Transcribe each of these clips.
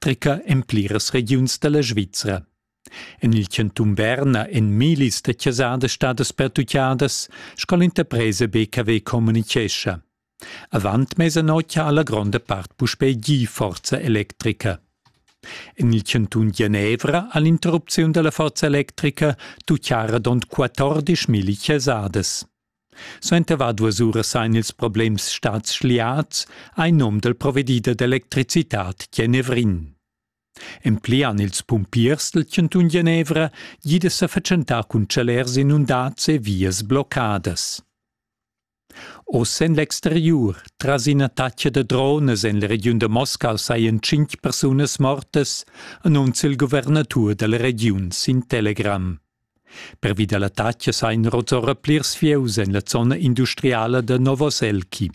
treca en pliras regiuns dalla Svizra. En il cantun Berna èn millis da chasadas stadas pertutgadas, sco l'interpresa BKW communitgescha. Avant mesanotg ha la gronda part puspè gì forza electrica. En il cantun Genevra ha l'interrupziun dalla forza electrica tuccara dond 14 milli chasadas. Suenter var duas uras ein ils problems stads schliats, ei num dal provedider d'electricitad Genevrin. Emplian ils pumpiers del cantun Genevra jida sa fatschentar cun chalers inundads e vias bloccadas. Oz en l'exteriur, tras ina taccia da drones en la regiun da Moscau sajan cinc persunas mortas, annunzia il guvernatur della regiun sin Telegram. Pervi da l'attacas ha inrot ora plirs fieus en la zona industriala da Novoselki.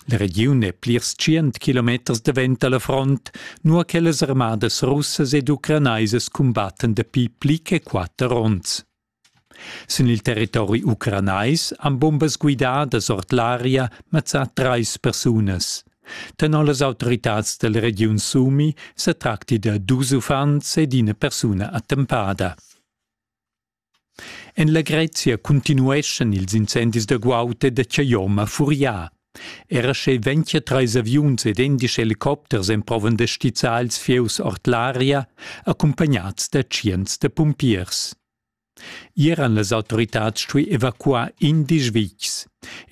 La regiun è plirs tschient kilometers davent da la front, nua che las armadas russas ed ucranaisas cumbattan dapi pli che quatter onns. Sin il territori ucranais han bombas guidadas ord l'aria mazzà trais persunas. Tenor las autoritads dalla regiun Sumi setracti da dus uffants ed ina persuna attempada. En la Grezia continueschan ils incendis da guaud e da Chayoma furià. Era sche ventia treis aviuns ed endisch helicopters emprovan da stizzar ils fieus ord l'aria, accumpagnats da tschients da pumpiers. Ier han las autoritads stuì evacuar indesch vitgs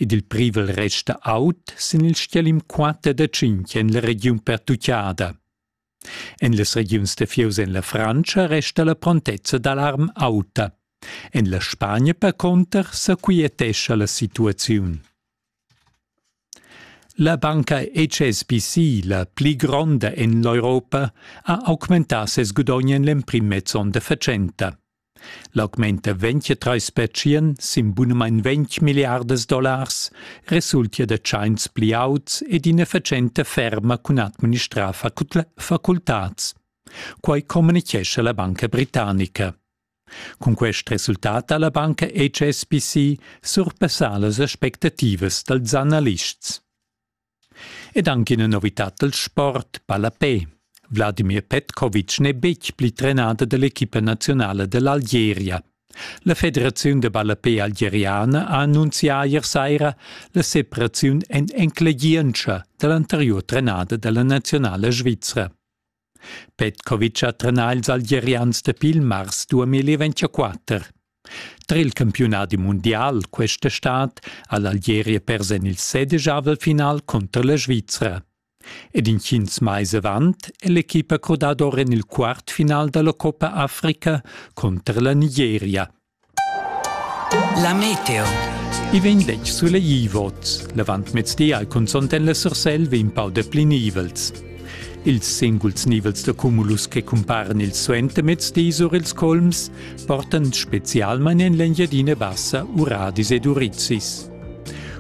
ed il privel resta aut sin il stgalim quatter da tschintg en la regiun pertuccada. En las regiuns da fieus en la Frantscha resta la prontezza d'alarm auta. En la Spagna percunter sa quietescha la situaziun. La banca HSBC, la pli gronda en l'Europa, ha augmentà ses gudogn en l'emprim mez onn da fatschenta. L'augment da 23 spetschien sin bunamain 20 milliardas dollars resultia da tschains pli auts ed ina fatschenta ferma cun administrar facultads. Quai communitgescha la banca britannica. Cun quest resultat ha la banca HSBC surpassà las aspectativas dals analists. Ed anche ina novità dal sport palapè. Vladimir Petkovic n'è betg pli trenader dell'equipa nazionala dell'Algeria. La Federaziun de ballapé algeriana ha annunzià ier saira la separaziun en enclegientscha dall'anteriur trenader della nazionala svizra. Petkovic ha trenà ils Algerians dapi il mars 2024. Tra il campiunadi mundial questa stad ha l'Algeria pers en il sedijavel final cunter la Svizra. Ed intgins mais avant è l'equipa crodada or en il quart final da la Coppa Africa cunter la Nigeria. La meteo. I vegn detg sulegl vots. L'avantmezdi al consont en la Sursel vegn pau depli nivels. Ils singuls nivels da cumulus che cumparan il suentermezdi sur ils colms portan specialmain en l'Engiadina Bassa uradis ed urizis.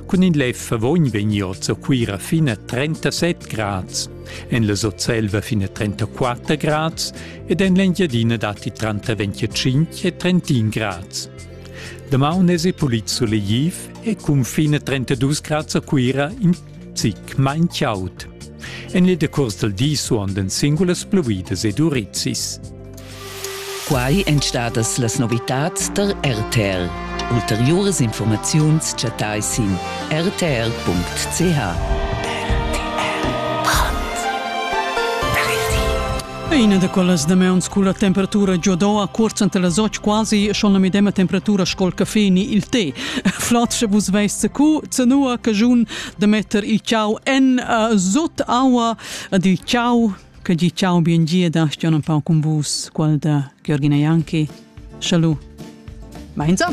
Cun in lev favogn vegniu a Cuira fin a 37 grads, en la Sotselva fin a 34 grads ed en l'Engiadina datti tranter 25 e 31 grads. Damaun es pulit solegliv e cunfin a 32 grads a Cuira in zic main chaud. En il decurs dal di suondan singulas pluvidas ed urizis. Quai èn stadas las novitads tar RTL. Ulteriuras informaziuns chattai sin rtl.ch. Ina da quellas damaun sco la temperatura giodò a cuorz ante las och quasi schon la medema temperatura scol caffè ni il tè. Flot sche vus veist cu zenua cagiun da metter il ciao en uh, sot aua ad il ciao Che gi ciao biengia da Stian un pau con vus, qual da Georgina Janki. Salut. Mainza.